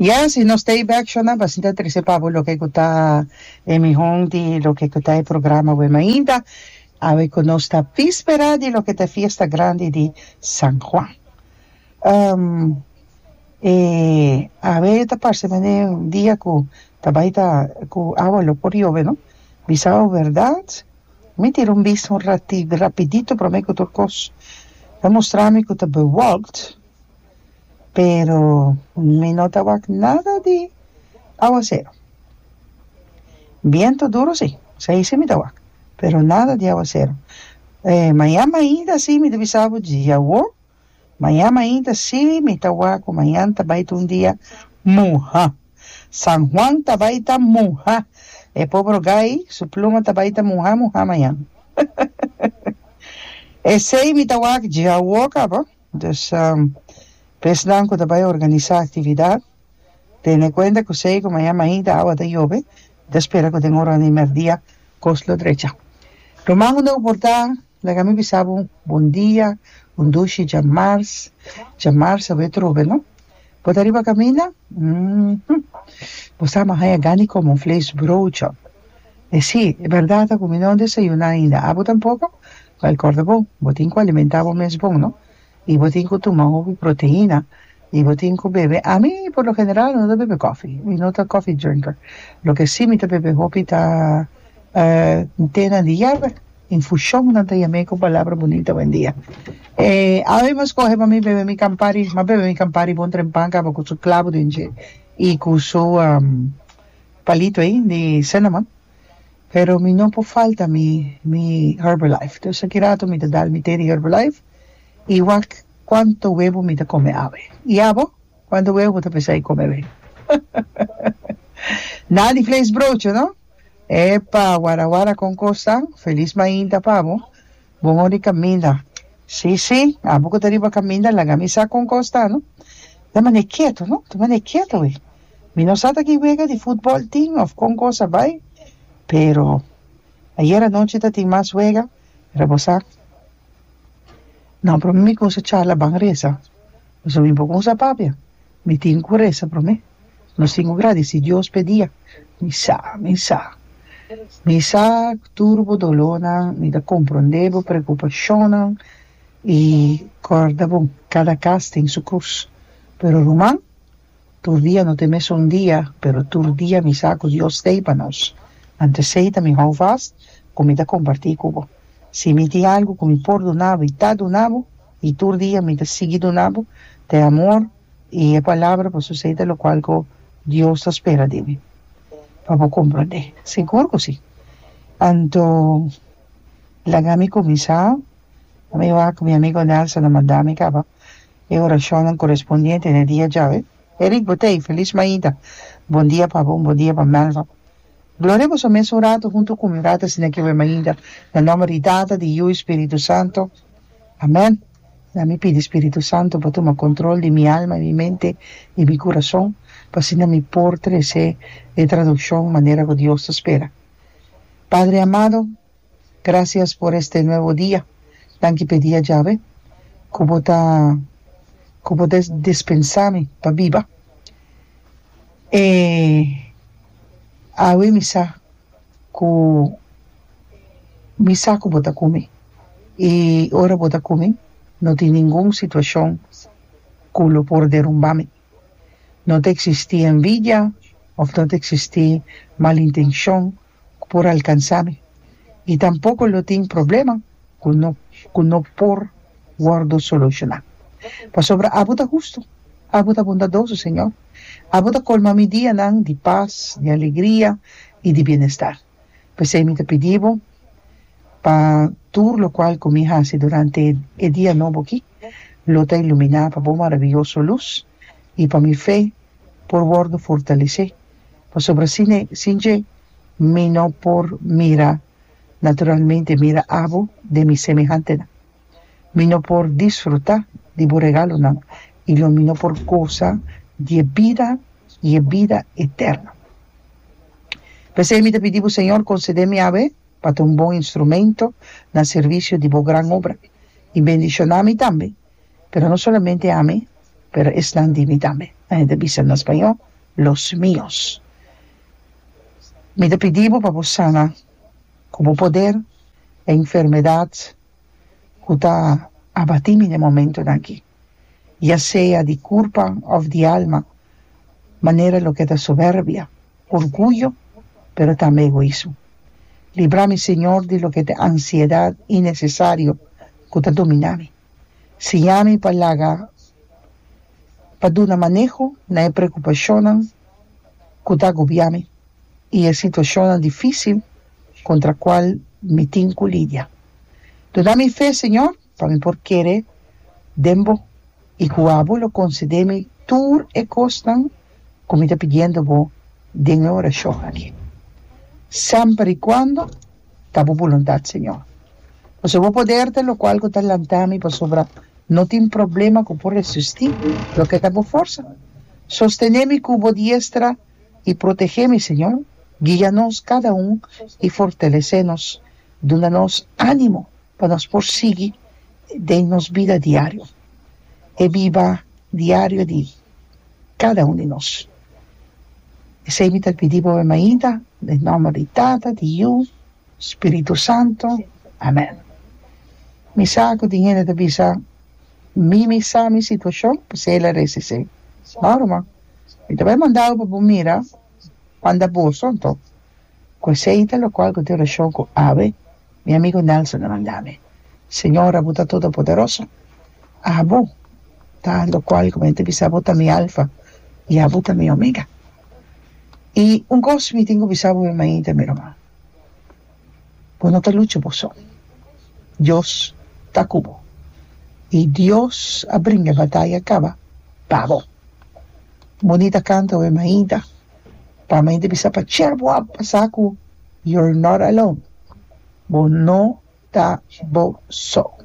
Yes, y nos tape action nan basita a trece pa bo loke cu ta e mihon di loke cu ta e programa Web Mainta, awe cu nos ta vispera di loke ta e fiesta grandi di San Juan. Um, e awe ta parce me den un dia cu ta bay ta, cu awa lo por yove no, bisa awe berdad, mi tira un bista un rati, rapidito prome cu tur cos, ta mostra mi cu ta bewolkt, pero mi no ta wak nada di aguasero biento duro si esei si mi ta wak pero nada di aguasero eh mañan mainta si mi ta bisabu djie awo mañan mainta si mi ta wak ku mañan ta bai ta un dia muha San Juan ta bai ta muha e pober ogai su pluma ta bai ta muha muha mañan esei mi ta wak djie awo kaba. Entonces pa esnan cu ta bay organisa actividad tene cuenta cu siey cu mañan mainta awa ta yove mi ta spera cu den ora di merdia cos lo drecha ruman un oporta laga mi bisa bo bon dia un dushi djamars djamars awe trobe no bo ta riba caminda hm bo sa ma haya gana di come un vlees broodje e si e berdad ta cu mi no desayuna ainda abo tampoco Well, corda bon, bo tin cu alimenta bo mes bon, no? Y bo tin cu tuma hopi proteina y bo tin cu bebe. Ami, por lo general, no ta bebe cofi. Mi no ta cofi drinker. Loke si mi ta bebe hopi ta, eh, tenan di yerba, infusion nan ta yam'e cu palabra bunito awendia. Eh, awe bo scoge pa mi bebe mi Campari, m'a bebe mi Campari bon trempa caba cu su clavo den dje y cu su, um, palito ey di cinnamon. pero mi no por falta mi mi herbalife dus aki rato mi ta dal mi te di herbalife y wak cuanto huevo mi ta come awe y abo cuanto huevo bo ta pensa di come awe na di vlees broodje no epa wara wara con cosa feliz mainta pa bo bon ori caminda si si abo cu ta riba caminda laga mi sa con cos ta no ta mane keto no ta mane keto wi Mi no sa ta ki wega di futbol tin of con cos a bay, pero ayer anochi ta tin mas wega, pero bo sa. No, prome mi cusa charla ban reza, pasobra mi bo cusa papia, mi tin cu reza prome, nos tin cu gradici Dios p'e dia, mi sa, mi sa, mi sa tur bo dolornan, mi ta compronde bo preocupacionnan y corda bo, cada cas tin su cruz, pero ruman, Tur dia no ta e mesun dia, pero tur dia mi sa ku Dios ta ei pa nos. Ante esei ta mi hou vast ku mi ta kompartí ku bo. Si mi tin algu ku mi por duna bo i ta duna bo, i tur dia mi ta sigui duna bo, ta e amor i e palabra pasobra esei ta lokual ku Dios ta spera di mi pa bo komprondé. Sigur ku si. Anto laga mi kuminsá. Mi wak mi amigu Nelson a manda mi kaba. e oracionnan corespondiente n'e dia djawe. Erick Botey, Feliz maida, bon dia pa bo, un bon dia pa Melva. Gloria boso a mes un rato hunto cu mi rata asina ki'e maida, na nomber di Tata, di Yu y Spiritu Santo. Amen. Na mi pidi Spiritu Santo pa tuma control di mi alma, di mi mente, di mi curason, p'asina mi por trece e traduccion manera cu Dios ta spera. Padre amado. Gracias por este nuevo dia. Danki p'e dia djawe cu bo ta cu bo ta dispensa mi pa biba. E awe mi sa cu mi sa cu bo ta cu mi y ora bo ta cu mi no tin ningun situacion cu lo por derumba mi. No ta eksistí envidia òf no ta eksistí malintenshon ku por alkansá mi, i tampoko lo tin problema ku no ku no por wòrdu solushoná. Pasobra abo ta hustu, abo ta bondadoso, Señor. Abo ta kolma mi dianan di pas, di alegria i di bienestar. P'esei mi ta pidi bo pa tur lokual ku mi hasi durante e dia nobo aki lo ta iluminá pa bo marabiyoso lus i pa mi fe por wòrdu fortalesé, pasobra sin e sin dje mi no por mira naturalmente mira abo den mi semehantenan. Mi no por disfrutá di bo regalonan, i lo mi no por goza di e bida i e bida eterno. P'esei mi ta pidi bo, Señor, konsede mi abé pa ta un bon instrumento na servisio di bo gran obra, i bendishoná mi tambe, pero no solamente ami, pero esnan di mi tambe, nan e ta bisa na spañó, los míos. Mi ta pidi bo pa bo sana. Ku bo poder, e enfermedat ku ta abatí mi den momentonan akí, ya sea di kurpa òf di alma, manera loke ta soberbia, orguyo, pero tambe egoismo. Libra mi, Señor, di loke t'e ansiedat inesesario ku ta dominá mi. Siña mi pa laga pa duna maneho na e preokupashonnan ku ta agobiá mi. i e situashonnan difísil kontra kual mi tin ku lidia. Duna mi fe, Señor, pa mi por kere den Bo i ku abo lo konsedé mi tur e kosnan ku mi ta pidiendo Bo den e orashon aki. Semper i kuando ta Bo boluntat, Señor. Pasobra Bo poder ta lokual ku ta lanta mi pasobra no tin problema ku por resistí loke ta Bo forsa. Sostené mi ku Bo diestra i protegé mi Señor, guia nos kada un i fortalesé nos, duna nos ánimo pa nos por sigui den nos bida diario, e biba diario di kada un di nos. Esei mi ta pidi boe mainta den nòmber di Tata, di Yu, Spiritu Santo. Amèn. Mi sa ku tin hende ta bisa, Mimi sa mi situashon, pasei el a resi esei. Baru, ma. Mi ta bai manda abo pa bo mira banda Boston to. Ku esei ta lokual ku tin relashon ku Abe, mi amigu Nelson a manda mi. Señor, Abu ta Todopoderoso. Abu ta lokual ku mi ta bisa bo ta mi Alfa i Abu ta mi Omega. I un kos mi tin ku bisa bo mi mainta, mi ruman. Bo no ta lucha bo son. Dios ta ku bo i Dios a bringa e bataya kaba pa bo. Bonita kanta we Mainta. Pa Mainta bisa pa cier bo a pasa ku You're not alone, Bo no ta bo son.